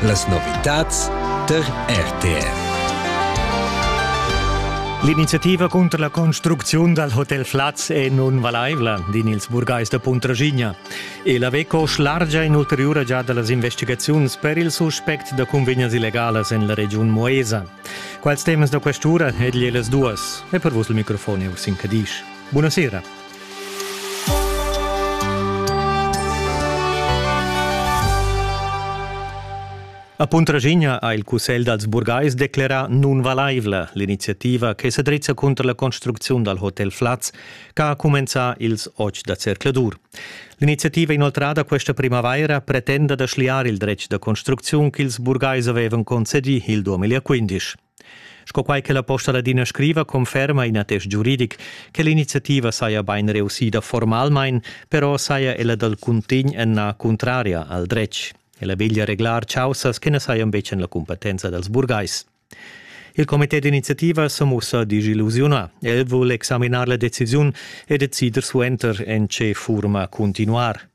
Las novitads der RTR. L'iniziativa cunter la construcziun dal hotel Flaz è nun valaivla, din ils burgais da Puntraschigna. E la WECO schlargia in'ulteriura giada las investigaziuns per il suspect da cunvegnas illegalas en la regiun Moesa. Quals temas da questura egli e las duas? E per vos il microfon è Ursin Cadisch. Buonasera. A Puntraschigna ha il Cussegl dals burgais declerà nunvalaivla l'iniziativa che sa drizza cunter la construcziun dal hotel Flaz che ha cumenzà ils otg da zercladur. L'iniziativa inoltrada questa primavaira pretenda da schliar il dretg da construcziun ch'ils burgais avevan concedì il 2015. Sco quai che la Posta Ladina scriva, conferma in attest giuridic che l'iniziativa saja bain reussida formalmain, però saja ella dal cuntegn ennà cuntraria al dretg. Ella veglia reglar chaussas che na sajan betg en la cumpetenza dals burgais. Il comité d'iniziativa sa mussa disillusiunà. El vul examinar la decisiun e decider suenter en tge furma continuar.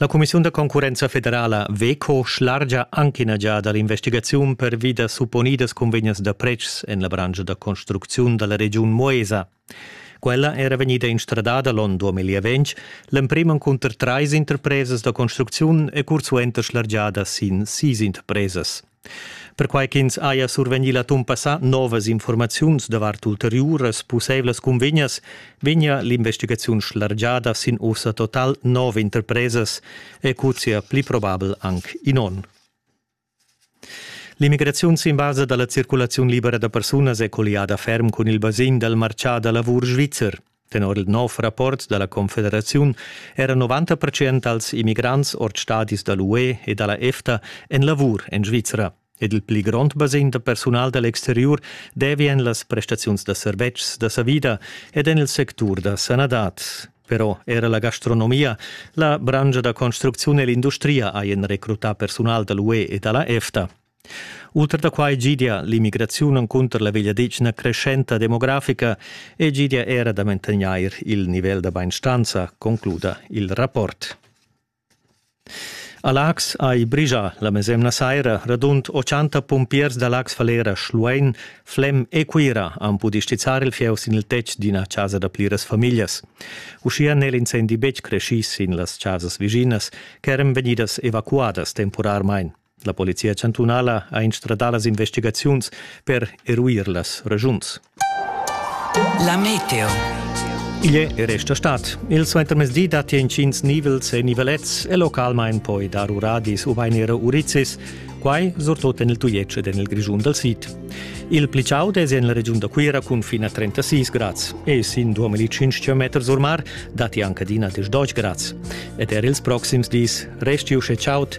La cumissiun da concurrenza federala WEKO schlargia anc ina giada l'investigaziun pervi da supponidas cunvegnas da pretschs en la branscha da construcziun da la regiun Moesa. Quella era vegnida instradada l'onn 2020, l'emprim encunter trais interpresas da construcziun e cursuenter schlargiada sin sis interpresas. Perquai ch'ins haja survegnì l'atun passà novas informaziuns davart ulteriuras pussaivlas cunvegnas, vegnia l'investigaziun schlargiada sin ussa total nov interpresas e cuzzia pli probabel anc in onn. L'immigraziun sin basa da la circulaziun libera da persunas è colliada ferm cun il basegn dal martgà da lavur svizzer. Tenor il nov rapport da la Confederaziun era 90 percent dals immigrants ord stadis da l'UE e da la EFTA en lavur en Svizra ed il pli grond basegn da persunal da l'exteriur devi en las prestaziuns da servetschs da savida ed en il sectur da sanadad. Però era la gastronomia, la branscha da construcziun e l'industria hajan recrutà persunal da l'UE e da la EFTA. Ultra da quai gidia l'immigraziun encunter la vegliadetgna creschenta demografica e gidia era da mantegnair il nivel da bainstanza, concluda il rapport. A Lax hai brigia la mesemna saira radund 80 pumpiers da Lax Falera Schluein, Flem e Cuira han pudì stizzar il fieu sin il tetg d'ina chasa da pliras famiglias. Uschia n'è l'incendi betg creschì sin las chasas viginas ch'eran vegnidas evacuadas temporarmain. La polizia chantunala ha instradà las investigaziuns per eruir las regiuns. La meteo. Igl è resta stat. Il suentermezdi datti intgins nivels e nivelets e localmain poi dar uradis ubain era urizis, quai surtut en il Tujetsch ed en il Grischun dal sid. Il pli chaud è en la regiun da Cuira cun fin a 36 grads e sin 2500 meter sur mar datti anche adina 10 grads. Ed er ils proxims dis resti uschè chaud